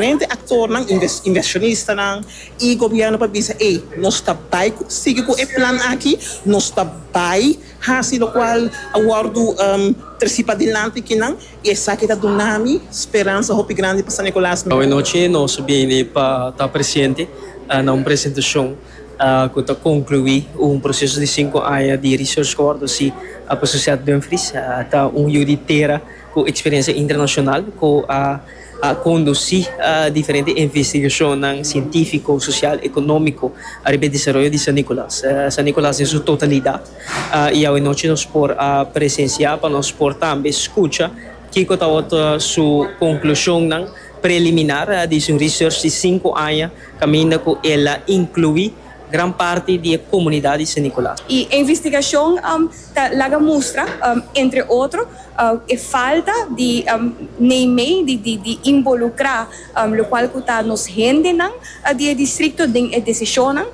Diferente aktornan, invershonistanan i gobièrnu por bisa, Ey, nos ta bai sigui ku e plan aki, nos ta bai hasi lokual a wòrdu trasí padilanti kinan, i esaki ta duna mi speransa hopi grandi pa San Nikolaas. Awe nochi nos bini pa ta presente na un presentashon ku ta konkluí un proseso di sinku aña di Research Coordinacy pa Sociedad Dumfries. Ta un yu di tera ku eksperensia internashonal ku a. a kondusí diferente investigashonnan sientífiko, sosial, ekonómiko ariba e desaroyo di San Nikolas, San Nikolas den su totalidat, i awe nochi nos por presensiá pa nos por tambe skucha kiko tabata su konklushonnan preliminar di su research di sinku aña kaminda ku el a inkluí. gran parti di e komunidat di Sen Nikolas. E investigashon ta laga mustra, entre otro, e falta di nei mei di involukrá lokual ku ta nos hendenan di e distrikto den e desishonnan,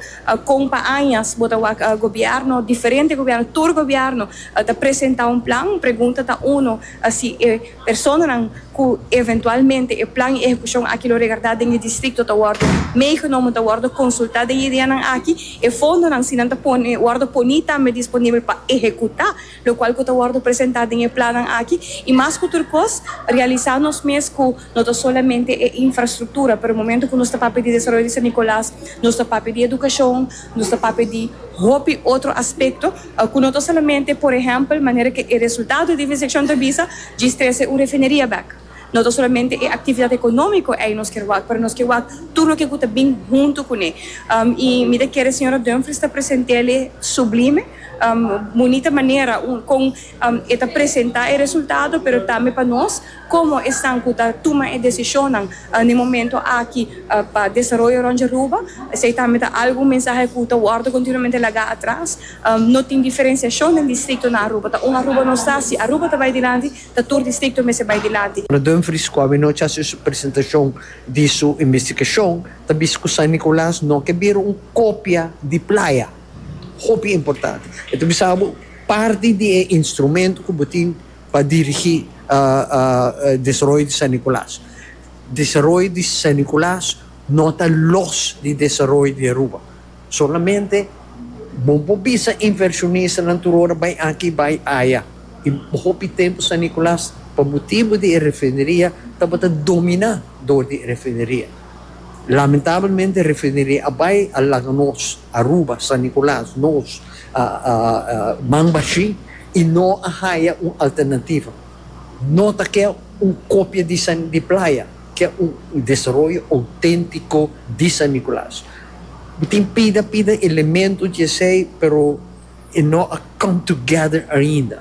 kon pa añas bo ta wak gobièrnu, diferente gobièrnu, tur gobièrnu ta presentá un plan, pregunta ta uno si e. Personanan cu eventualmente e plan y ehecucion aki lo regarda den e districto ta wordo meegenomen, ta wordo consulta den e ideanan aki. E fondonan, si nan ta pone, wordo poni tambe disponibel pa ehecuta locual cu ta wordo presenta den e plannan aki. Y mas cu tur cos, realisa nos mes cu no ta solamente e infrastructura, pero momento cu nos ta papia di desaroyo di San Nicolas, nos ta papia di educacion, Nos ta papia di hopi otro aspekto ku no ta solamente, por ehèmpel, manera ku e resultado di investigashon ta bisa, djis trese un refineria bèk. No ta solamente e aktividat ekonómiko ei nos ke wak, pero nos ke wak tur loke ku ta bin huntu kuné. I mi ta kere señora Dumfries ta present'e sublime, bunita manera kon e ta presentá e resultado, pero tambe pa nos. Komo esnan ku ta tuma e desishonnan na e momentu aki pa desaroyo rònt di Aruba, esei tambe ta algun mensahe ku ta wòrdu kontinuamente lagá atras. No tin diferensiashon den distrikto na Aruba. Ta un Aruba nos ta. Si Aruba ta bai dilanti, ta tur distrikto mester bai dilanti. Ora Dumfries, ku awenochi a hasi su presentashon di su investigashon, ta bisa ku San Nicolas no ke bira un kopia di playa. Hopi importante. E ta bisa bo parti di e instrumento ku bo tin. pa dirigí desaroyo di San Nicolas. Desaroyo di San Nicolas no ta los di desaroyo di Aruba. Solamente bo por bisa invershonistanan tur ora bai aki, bai aya. I hopi tempu San Nicolas, pa motibu di e refineria, tabata dominá dor di e refineria. Lamentablemente e refineria a bai, a laga nos, Aruba, San Nicolas, nos, man bashin y no a haya un alternativa. No ta ke un kopia di San di Playa, ke un desaroyo autentico di San Nicolas. Mi tin pida pida elemento di esey pero e no a come together ainda.